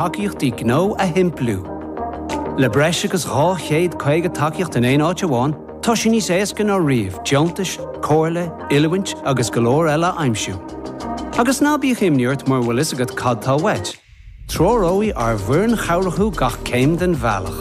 tacaíochtaí gnó a shimpliú. Le breis agus 250 tacaíocht in aon áit amháin, tá sé níos éasca ná riamh deontais, comhairle, oiliúint agus go leor eile a aimsiú. Agus ná bíodh imní ort mura bhfuil fhios agat cad tá uait, treoróidh ár bhfoireann chabhrach thú gach céim den bhealach.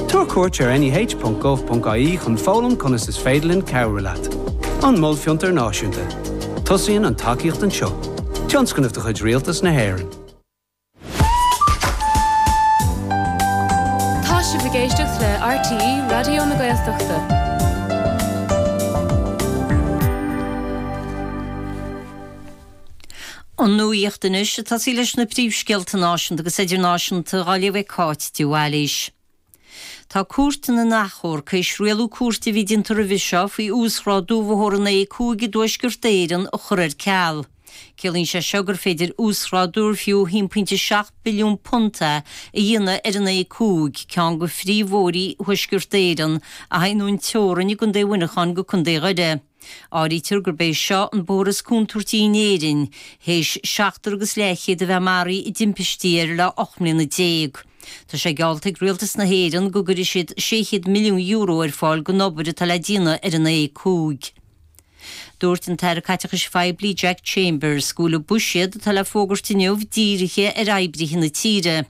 Tabhair cuairt ar neh.gov.ie chun foghlaim conas is féidir linn cabhrú leat. An Mol Fiontar Náisiúnta. Tosaíonn an tacaíocht anseo. Tionscnamh de chuid Rialtas na hÉireann. Tá sibh ag éisteacht le RTÉ Raidió na Gaeltachta. An nuacht anois, ag tosaí leis na príomhscéalta náisiúnta agus idirnáisiúnta, á léamh ag Cáit de Bhailís. Tá Cúirt na nAchomharc tar éis rialú cúirte a bhí déanta roimhe seo faoi uasghrádú bhóthar an A5 i dTuaisceart Éireann a chur ar ceal. Ciallaíonn sé seo gur féidir uasghrádú ar fiú £1.7 billiún é a dhéanamh ar an A5, ceann de phríomhbhóithrí Thuaisceart Éireann, a théann ón teorainn i gContae Mhuineacháin go Contae Dhoire. Áirítear gurb é seo an bóthar is contúirtí in Éirinn, théis seachtar agus leathchéad a bheith maraithe i dtimpistí air le 18 mbliana. Tá sé geallta ag Rialtas na hÉireann go gcuirfidh siad €600 milliún ar fáil don obair atá le déanamh ar an A5. Dúirt an tAire Caiteachais Phoiblí Jack Chambers go bhfuil an buiséad atá le fógairt inniu dírithe ar oibrithe na tíre.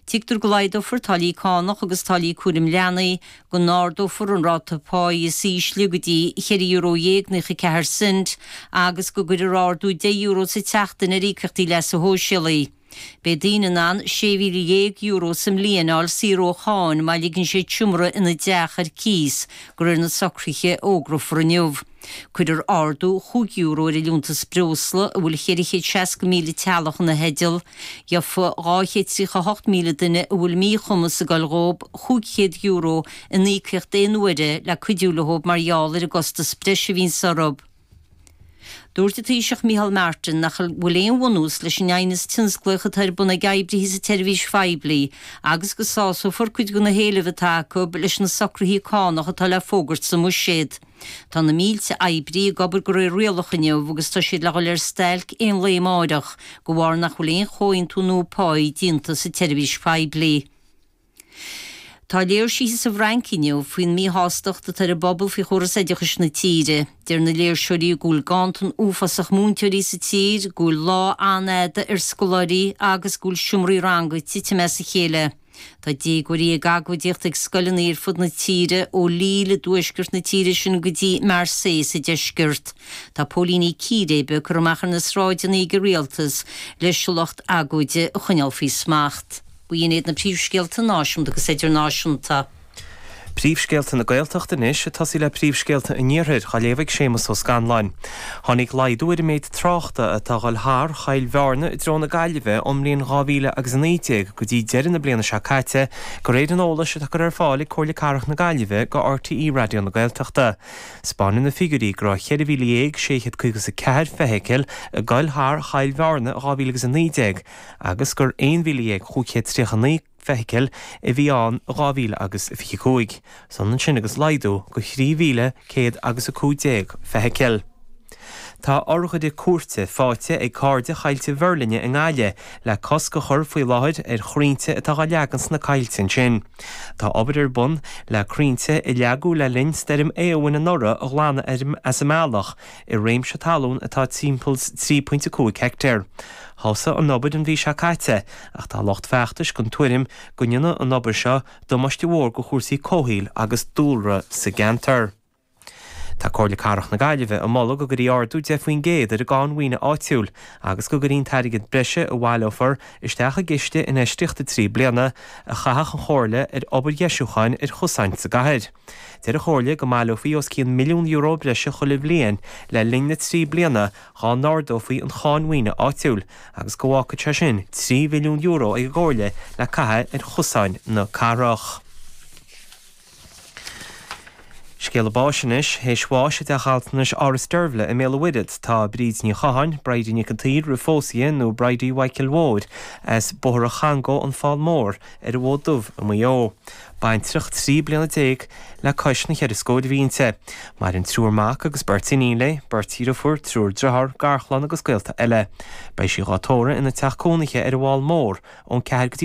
Tuigtear go laghdófar táillí cánach agus táillí cúraim leanaí, go n-ardófar an ráta páí is ísle go dtí cheithre euro dhéag naocha ceathair cent agus go gcuirfear ardú deich euro sa tseachtain ar íocaíochtaí leasa shóisialaigh. Beidh daoine in ann sé mhíle dhéag euro sa mbliain a fháil saor ó cháin má ligeann siad seomra ina dteach ar cíos de réir na socruithe a fhógrófar inniu. Cuirfear ardú chúig euro ar an liúntas breosla a bhfuil 460,000 teaghlach ina theideal, gheobhaidh 238,000 duine a bhfuil míchumas ag goil dhóib, 500 euro in íocaíocht aon uaire le cuidiú leob mar gheall ar an gcostas breise a bhíonns orthub. Dúirt an Taoiseach Micheál Martin nach bhfuil aon bhunús leis an aighneas tionsclaíoch atá ar bun ag oibrithe sa tseirbhís phoiblí agus go sásófar cuid de na héilimh atá acu leis na socruithe cánach atá le fógairt sa mBuiséad. Tá na mílte oibrí ag obair de réir rialach inniu agus tá siad le dhul ar stailc aon lae amáireach de bharr nach bhfuil aon chomhaontú nua páí déanta sa tseirbhís phoiblí. Tá léirsithe sa bhFrainc inniu faoin míshástacht atá ar an bpobal faoi chóras oideachais na tíre. Deir na léirseoirí go bhfuil ganntan uafásach múinteoirí sa tír, go bhfuil lá an-fhada ar scoláirí agus go bhfuil seomraí ranga ag titim as a chéile. Tá déagóirí ag agóidíocht ag scoileanna ar fud na tíre, ó Lille i dtuaisceart na tíre sin go dtí Marseille sa deisceart. Tá póilíní círéibe curtha amach ar na sráideanna ag an rialtas leis an lucht agóide a choinneáil faoi smacht. B'in iad na príomhscéalta náisiúnta agus idirnáisiúnta. Príomhscéalta na Gaeltachta anois ag tosaí le príomhscéalta an Iarthair á léamh ag Séamas Ó Scanláin. Tháinig laghdú ar an méid tráchta atá ag dul thar Choill Bhearna i dtreo na Gaillimhe ón mbliain dhá mhíle agus a naoi déag go dtí deireadh na bliana seo caite de réir an eolais atá curtha ar fáil ag Comhairle Cathrach na Gaillimhe do RTÉ Raidió na Gaeltachta. 'Spáineann na figiúirí go raibh cheithre mhíle dhéag sé chéad caoga is a ceathair feithicil ag dul thar Choill Bhearna i dhá mhíle agus a naoi déag agus gur aon mhíle dhéag chúig chéad tríocha naoi feithicil a bhí ann i 2000 agus 25 is ionann sin agus laghdú de 3,100 agus 15 feithicil. Tá urghaire cúirte faighte ag Cairde Choillte Mheirlinne i nGaillimh le cosc a chur faoi láthair ar chrainnte atá á leagan sna coillte ansin. Tá obair ar bun le crainnte a leagadh le linn stoirm Éowyn anuraidh a ghlanadh as an mbealach i réimse talún atá timpeall 3.5 heictéar. Thosaigh an obair an mhí seo caite ach tá lucht feachtais den tuairim go ndéanfadh an obair seo damáiste mór do chúrsaí comhshaoil agus dúlra sa gceantar. Tá Comhairle Cathrach na Gaillimhe ag moladh go gcuirfí ardú 10 faoin gcéad ar an gcáin mhaoine áitiúil agus go gcuirfí an t-airgead breise a bhaileofaí isteach i gciste infheistíochta trí bliana a chaithfeadh an Chomhairle ar obair dheisiúcháin ar chosáin sa gcathair. Deir an Chomhairle go mbaileofaí os cionn milliún euro breise chuile bhliain le linn na trí bliana dhá n-ardófaí an cháin mhaoine áitiúil agus go bhfágfadh sé sin trí mhilliún euro ag an gComhairle le caitheamh ar chosáin na cathrach. Scéala báis anois, théis bháis i dteach altranais Áras Deirbhle i mBéal an Mhuirthead tá Bríd Ní Chatháin, Bridie Nic an tSaoir roimh phósadh di, nó Bridie Mhaidhcil Mhóir, as Bóthar an Changó, An Fál Mór, ar an bhFód Dubh i Maigh Eo. Baintreach 13 bliana le cois na cheithre scóir a bhí inti. Maireann triúr mac agus beirt iníon léi, beirt deirfiúr, triúr driotháir, garchlann agus gaolta eile. Beidh sí dhá tórramh ina teach cónaithe ar an bhFál Mór ón 4 go dtí an